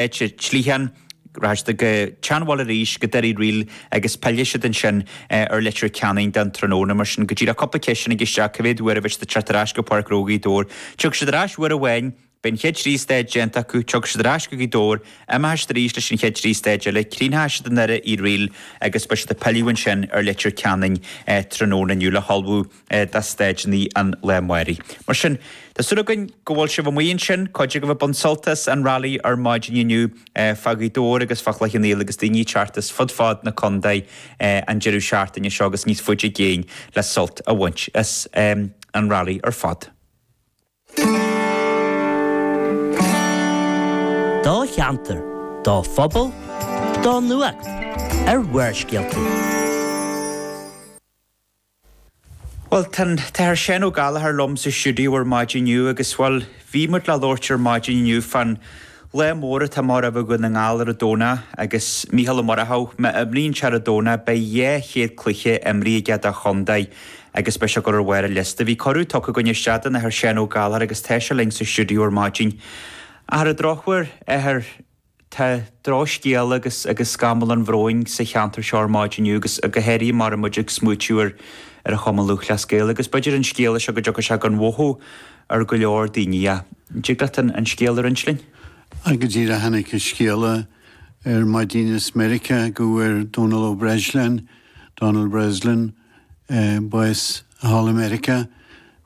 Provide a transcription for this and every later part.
an tSloitheán, rachaidh siad go Teanwall arís, go Doire Uí Fhríl agus pillfidh siad ansin ar Leitir Ceanainn don tráthnóna. Mar sin, go díreach cúpla ceisteanna ag isteach, cé mhéad uair a bheidh siad ag teacht ar ais go Páirc Ghnó Ghaoth Dobhair? Tiocfaidh siad ar ais uair amháin, beidh an chéad trí stáid déanta acu, tiocfaidh siad ar ais go Gaoth Dobhair, imeoidh siad arís leis an chéad trí stáid eile, críochnóidh siad i nDoire Uí Fhríl agus beidh siad ag pilleadh ansin ar Leitir Ceanainn tráthnóna inniu le hullmhú. do stáideannaí an lae amáraigh. Mar sin, tá súil againn go bhfuil sibh amuigh ansin, cuid agaibh ag baint sult as an rally ar maidin inniu fá Ghaoth Dobhair agus fá Chloich Cheann Fhaola agus daoine ag teacht as fud fad na condae an deireadh seachtaine seo agus níos faide i gcéin le sult a bhaint as an rally ar fad. Do cheantar, do phobal, do nuacht ar Bharrscéalta. Bhuel, tá an tAthair Seán Ó Gallchóir liom sa stiúideo ar maidin inniu agus, bhuel, bhí muid le labhairt ar maidin inniu fán lá mór atá amach roimh Dhún na nGall ar an Domhnach agus Micheál Ó Murchú, má imríonn sé ar an Domhnach, beidh dhá chéad cluiche imrithe aige dá chontae agus beidh sé go hard ar an liosta. Bhí cuireadh tugtha againn isteach don Athair Seán Ó Gallchóir agus tá sé linn sa stiúideo ar maidin. Ach ar an drochuair, a Athair. Tá drochscéal agus agus scamall an bhróin sa cheantar seo ar maidin inniu agus go háirithe mar atá muid ag smaoitiú ar ar an Chumann Lúthchleas Gael agus b'fhéidir an scéala seo go dtiocfaidh sé gan mhothú ar go leor daoine an dtig leat an an scéal a roinnt linn. Á, go díreach tháinig an scéala ar maidin as Meiriceá go bhfuair Dónal Ó Breisleáin, Donald Breslin, bás thall i Meiriceá,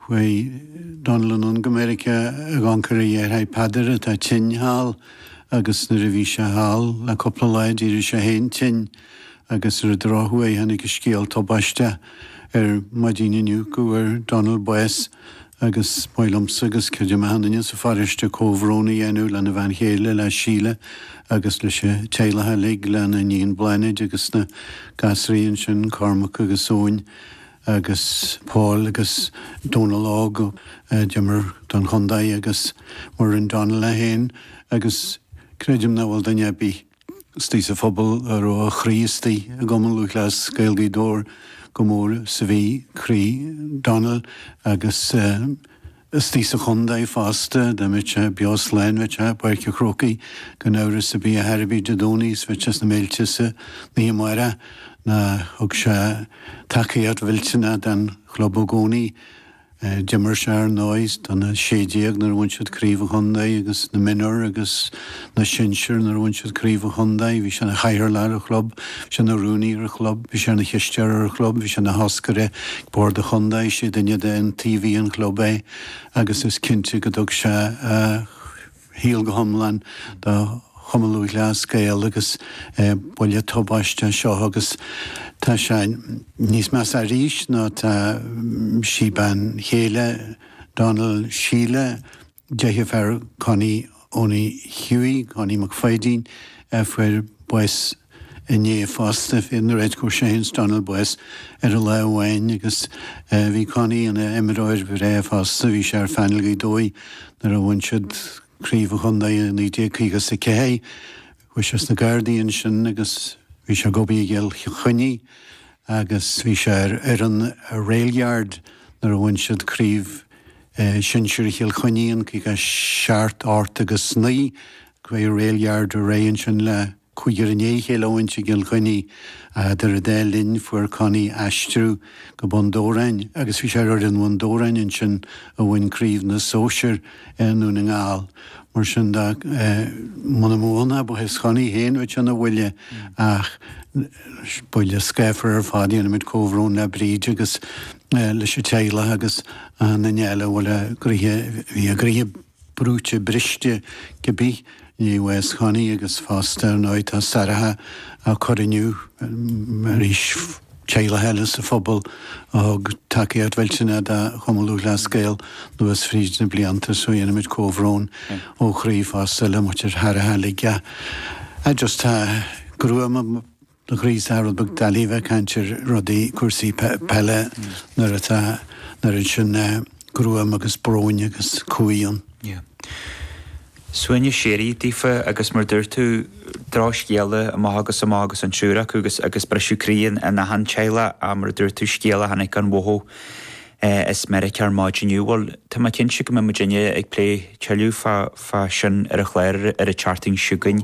chuaigh Dónall anonn go Meiriceá ag amharc ar a dheartháir Peadar atá tinn thall agus nuair a bhí sé thall le cúpla lá d'éirigh sé féin tinn agus ar an drochuair tháinig an scéal tubaisteach ar maidin inniu go bhfuair Dónall bás. agus ba mhaith liomsa agus creidim achan nduine sa pharóiste comhbhrón a dhéanamh lena bhean chéile, le Síle, agus leis an teaghlach uilig, lena iníon Bláthnaid agus na gasraí ansin, Cormac agus Eoin agus Paul agus Dónal Óg, a d'imir don chontae, agus mar a rinne Dónall é féin, agus creidim nach bhfuil duine ar bith. Istigh sa phobal a raibh a chroí istigh i gCumann Lúthchleas Gael Ghaoth Dobhair chomh mór is a bhí croí Donald agus istigh sa chontae fosta, dá mbeadh sé beo slán, bheadh sé i bPáirc an Chrócaigh gan amhras ar bith ar bith Dé Domhnaigh is bheadh sé sna Méilte san oíche amárach ná thug sé tacaíocht mhillteanach don chlub i gcónaí. D'imir sé, ar ndóigh, do na 16 nuair a bhain siad Craobh an Chontae agus na mionúir agus na sinsir nuair a bhain siad Craobh an Chontae. Bhí sé ina chathaoirleach ar an chlub, bhí sé ina rúnaí ar an chlub, bhí sé ina chisteoir ar an chlub, bhí sé ina thoscaire ag Bord an Chontae, is é duine d'iontaobhaithe an chlub é agus is cinnte go dtug sé a shaol go hiomlán do Chumann Lúthchleas Gael agus buille tubaisteach seo agus tá sé níos measa arís nó tá sí bean chéile Donal Síle deirfiúr Connie Owenie Hughie Connie Mac Pháidín a fuair bás inné fosta, fuair an bheirt acu é féin agus Donal bás ar an lá amháin agus bhí Connie ina imreoir bhreá fosta, bhí sé ar phainéal Ghaoth Dobhair nuair a bhain siad craobh an chontae i 1954. Chuaigh sé sna Gardaí ansin agus bhí sé ag obair i gCill Chainnigh agus bhí sé ar fhoireann Railyard nuair a bhain siad craobh shinsir Chill Chainnigh in 57, 8 agus 9, chuaigh Railyard ar aghaidh ansin le. Cúigear i ndiaidh a chéile a bhaint i gCill Chainnigh ach eadar an dá linn, fuair Connie aistriú go Bun Dobhráin agus bhí sé ar fhoireann Bhun Dobhráin ansin a bhain craobh na sóisear i nDún na nGall. Mar sin de, muna mbeadh ann ach bás Chonnie féin bheadh sé ina bhuille ach buille scáfar ar fad. Déanaimid comhbhrón le Bríd agus leis an teaghlach agus Nell a bhfuil a gcroíthe, bhí a gcroíthe, brúite briste, cibé i ndiaidh bhás Chonnie agus fosta nó tá saraithe, á cur inniu arís, teaghlaigh eile sa phobal a thug tacaíocht mhillteanach do Chumann Lúthchleas Gael anuas fríd na blianta, so déanaimid comhbhrón ó chroí fosta le muintir Thairrthe Ligeadh. I just tá gruaim. ann agus tá sé rud beag doiligh a bheith ag caint ar rudaí cúrsaí peile nuair atá an oiread sin gruaim agus bróin agus cumhaidh ann yeah suaimhneas síoraí daofa agus mar dúirt tú drochscéala amach agus amach agus an triúr acu agus agus briseadh croí in in achan teaghlach a mar a dúirt tú scéal a tháinig gan mhothú eh as Meiriceá ar maidin inniu bhuel tá mé cinnte go mbeidh muidinne ag plé tuilleadh fá fá sin ar an chlár ar an tseachtain seo chugainn